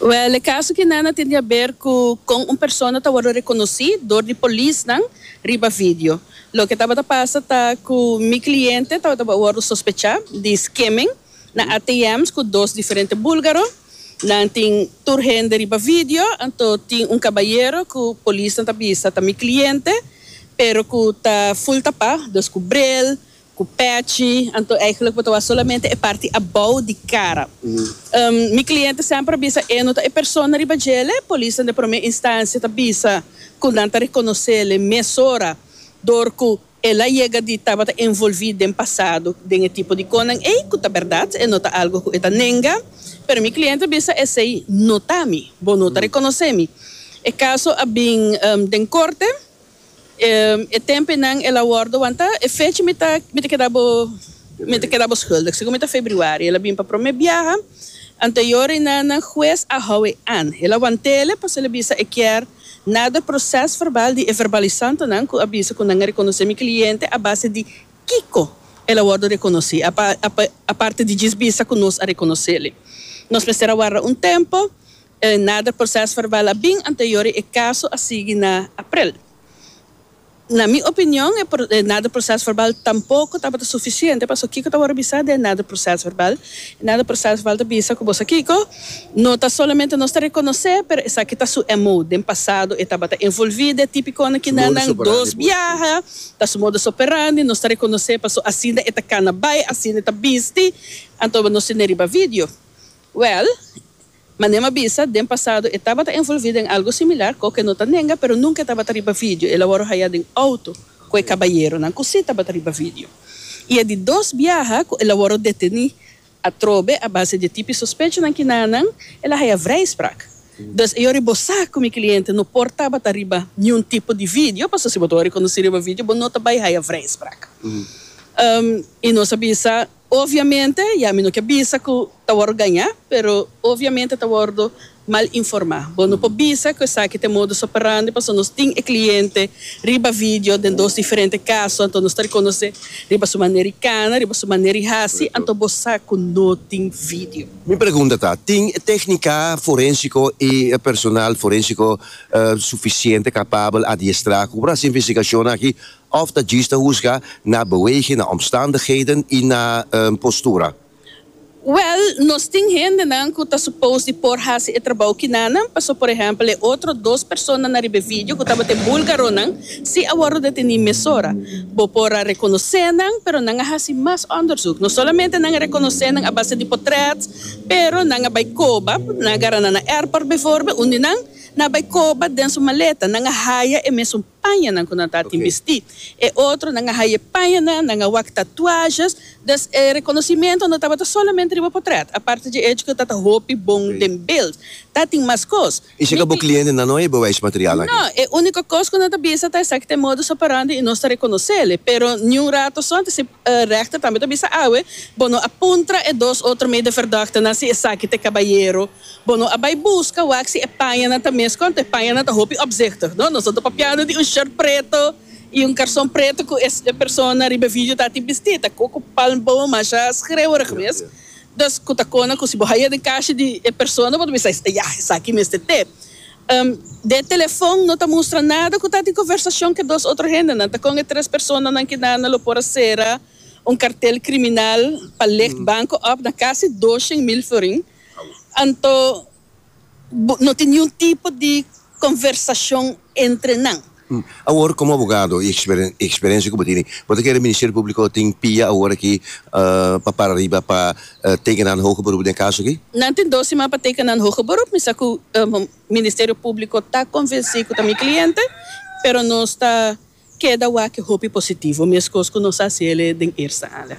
Wèl, e kaso kinan a tin di haber ku kon un persona ta wòrdu rekonosí dor di polisnan riba vidio. Loke tabata pasa ta ku mi kliente tabata wòrdu sospechá di skimming na ATM's ku dos diferente búlgaro. Nan tin tur hende riba vidio, anto tin un kabayero ku polisnan ta bisa ta mi kliente pero ku ta ful tapá, dus ku bril, Cu patchy, anto eigenlijk bo ta wak solamente e parti abou di cara. Mi cliente semper a bisa e no ta e persona riba djele. Polisnan den prome instancia ta bisa cu nan ta reconocele mesora door cu el a yega di tabata envolvi den pasado den e tipo di conan ey, cu ta berdad, e no ta algo cu e ta nenga. Pero mi cliente a bisa esey no ta mi, bo no ta reconoce mi. E caso a bin den corte. E tempenan el a worde wanta e fecha mi ta mi ta keda bo mi ta keda bo schuldig segun mi ta febriuari el a bin pa prome biaha anteyor i na na huez a hou e an el a wantele pasobra el a bisa e kier nader proces verbal di e verbalisantonan ku a bisa ku nan a rekonosé mi kliente a base di kiko el a worde rekonosí apa apa aparte di djis bisa ku nos a rekonosele nos mester a warda un tempo E nader proces verbal a bin anterior y e caso a sigui na aprel. Na mi opinion e nader proces verbal tampoco tabata suficiente pasobra kico ta worde bisa den e nader proces verbal? E nader proces verbal ta bisa cu bo sa kico? No ta solamente nos ta reconoce pero esaki ta su MO. Den pasado e tabata envolvi den e tipiconan kina nan dos biaha, ta su modus operandi, nos ta reconoce pasobra asina e ta cana bay, asina e ta bisti, anto nos tin den riba video. Well, Manem a bisa, den pasado e tabata envolví den algu similar, cu oca e no ta nenga, pero nunca e tabata riba video, el a wòrdu haya den auto cu e cabayeronan cu sí tabata riba video. I e di dos biaha cu el a wòrdu detení atrobe a base di e tipi sospechonan ki na nan, el a haya vrijspraak. Dus e yori bo sa cu mi cliente no por tabata riba niun tipo di video, pasobra si bo ta wòrdu riconocí riba video bo no ta bay haya vrijspraak. I nos a bisa, Obviamente, ya mi no ke bisa ku ta wòrdu gañá, pero obviamente ta wòrdu mal informá. Bo no por bisa ku esaki ta e modus operandi pasobra nos tin e kliente riba vidio den dos diferente kaso, anto nos ta rekonosé riba su manera di kana, riba su manera di hasi, anto bo sa ku no tin vidio. Mi pregunta ta, tin e téknika forénsiko i e personal forénsiko sufisiente kapabel, adiestrá, ku por hasi investigashonnan aki? Òf ta djis ta husga na beweging, na omstandigheden i na postura? Wèl, nos tin hendenan ku ta supos di por hasi e trabou kinannan. Pasó por ehèmpel e otro dos persona na riba e vidio ku tabata e bulgaronan, si a wòrdu detení mesora. Bo por a rekonosé nan, pero nan a hasi mas òndersuk. No solamente nan a rekonosé nan a base di potrèt, pero nan a bai koba, nan a gara nan na airport, bijvoorbeeld, unda nan nan a bai koba den su maleta, nan a haya e mesun. pañanan ku nan ta tin bistí. E otronan a haye pañanan, nan a wak tatuajes, dus e rekonosimiento no tabata solamente riba potrèt. Aparte dje echo ku ta ta hopi bon den bild, ta tin mas kos. I si ka bo kliente nan no hebe wèsh material aki? No, e úniko kos ku nan ta bisa ta esaki ta e modus operandi i nos ta rekonosele. Pero niun rato so, anto si rèchter tambe ta bisa awe, bo no a puntra e dos otro meideverdòkternan si esaki ta e kabayero Bo no a bai buska wak si e pañanan ta mes konta. E pañanan ta hopi opzichtig, no? Nos a tabata piado di un short preto i un karson preto ku e persona riba e video ta tin bistí. Ta koko palm boon, masha skreeuwerig gewees. Dus ku ta kona ku si bo haya den kashi di e persona bo ta bisa, ya, esaki mester te. Den e telefon no ta mustra nada ku ta di konversashon ku e dos otro hendenan. Ta kon e tres personanan kinanda lo por a sera un kartel kriminal pa legt banko òf na kasi doshen mil florin. Anto no tin niun tipo di conversacion entre nan. Awor como abogado y experiencia cu bo tin, bo ta kere Ministerio Publico tin pia awor aki pa para riba pa teken nan hoge beroep den caso aki? Nan tin dos siman pa teken nan hoge beroep. Mi sa cu Ministerio Publico ta convenci cu ta mi cliente, pero nos ta keda wak hopi positivo, mescos cu nos a haci el'e den eerste aña.